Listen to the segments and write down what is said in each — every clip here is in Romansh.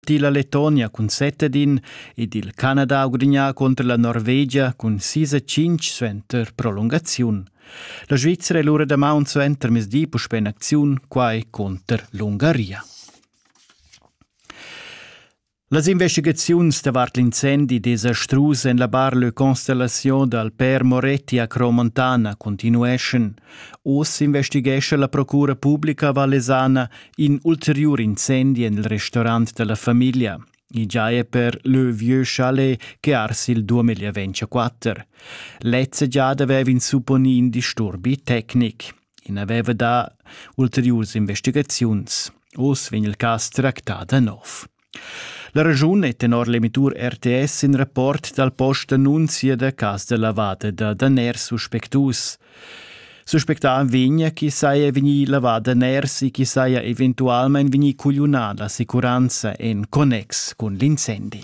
dilla Letonia cun Setedin ed il Canada ugrignà contro la Norvegia cun sis e cinc suenter prolungaziun. La Svizzera è lura damaun suenter mesdi puspe in acziun, quai contro l'Ungaria. Las investigaziuns davart l'incendi desastrus en la bar Le Constellation dal Père Moretti a Cromontana continueschan. Oz investighescha la Procura Publica Vallesana In ulteriur incendi en il restaurant dalla famiglia. I giaja per leu vieu chalet che ars il 2024. Lezza giada aveva ins supponì in disturbi tecnic. In aveva dà ulteriurs investigaziuns. Oz vegn il cas tractà da nov. La regiun è tenor l'emitur RTS in rapport dal post d'annunzia da cas da lavada da daners suspectus. Suspectà vegn chi saja vegnì lavada ners e chi saja eventualmain vegnì cugliunà l'assicuranza en connex cun l'incendi.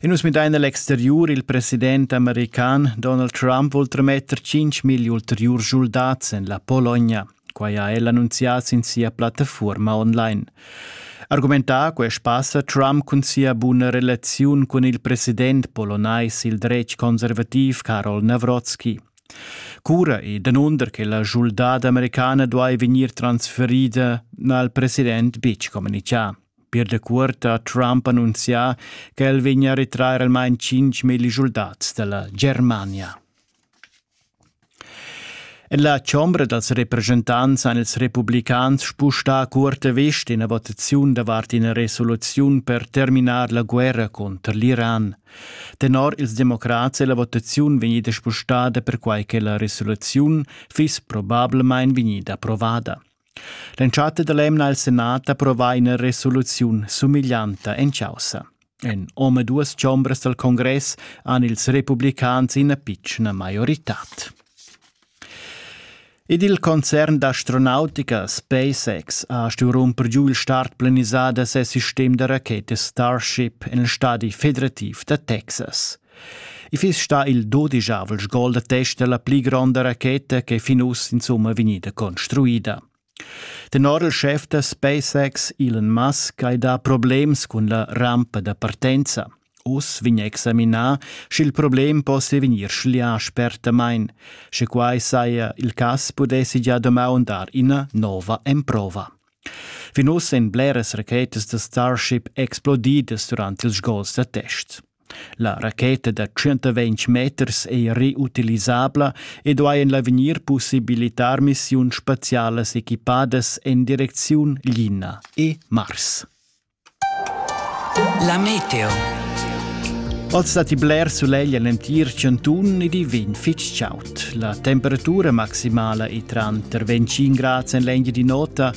E nus midain a l'exteriur. Il president american Donald Trump vul trametter 5.000 ulteriur schuldats en la Pologna. Quai ha el annunzià sin sia plattafuorma online. Argumentà quest passa Trump cun sia buna relaziun cun il president polonais il dretg conservativ Karol Nawrocki. Cura e danunder che la schuldada americana duai vegnir transferida n'ha il president betg communichà. Pir da cuort ha Trump annunzià ch'el vegnia a retrair almain tschintg milli schuldats da la Germania. En la chombra dals represchentants han ils republicans spustà a curta vest ina votaziun davart ina resoluziun per terminar la guerra cunter l'Iran. Tenor ils democrats è la votaziun vegnida spostada perquai che la resoluziun fiss probablamain vegnida approvada. L'entschatta dall'emna ha il senat approvà ina resoluziun sumiglianta en chaussa. En omaduas chombras dal congress han ils republicans ina pitschna maioritad. Ed il concern d'astronautica SpaceX ha stuì rumper giu il start planisà da ses sistem da rachetas Starship en il stadi federativ da Texas. I fiss stà il dodichavel sgol da test da la pli gronda racheta ch'è fin uss insumma vegnida construida. Tenor il schef da SpaceX Elon Musk hai dà problems cun la rampa da partenza. Uss vegn examinà, sch'il problem possia vegnir schlià spertamain. Sche quai saja il cas, pudessi gia damaun dar ina nova emprova. Fin uss èn bleras rachetas da Starship explodidas durant ils sgols da test. La racheta da tschient-ventg meters ei reutilisabla ed ei en l'avegnir possibilitar missiuns spazialas equipadas en direcziun Lina e Mars. La meteo. Oz datti bler sulegl en l'entir chantun ed i vegn fitg chaud. La temperatura maximala è tranter 25 grads en l'engia di nota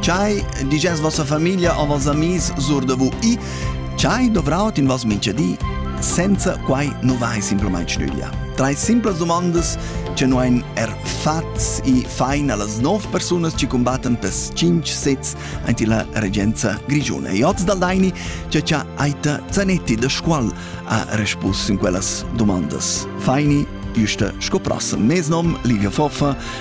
Chai diges vossa famiglia a vos amis sur da VI? Chai dovraut in vos minchadi? Senza quai nu vai simplamaing stüglia. Trais simplas dumandas che nu hain er fats e fain a las nov persunas chi cumbattan pels tschinch sezs aint illa regenza grischuna. E hoz dal Daini che cha Aita Zanetti da Scuol ha respus in quellas dumandas. Faini, güsta sco prossem. Mes nom, Liga Foffa,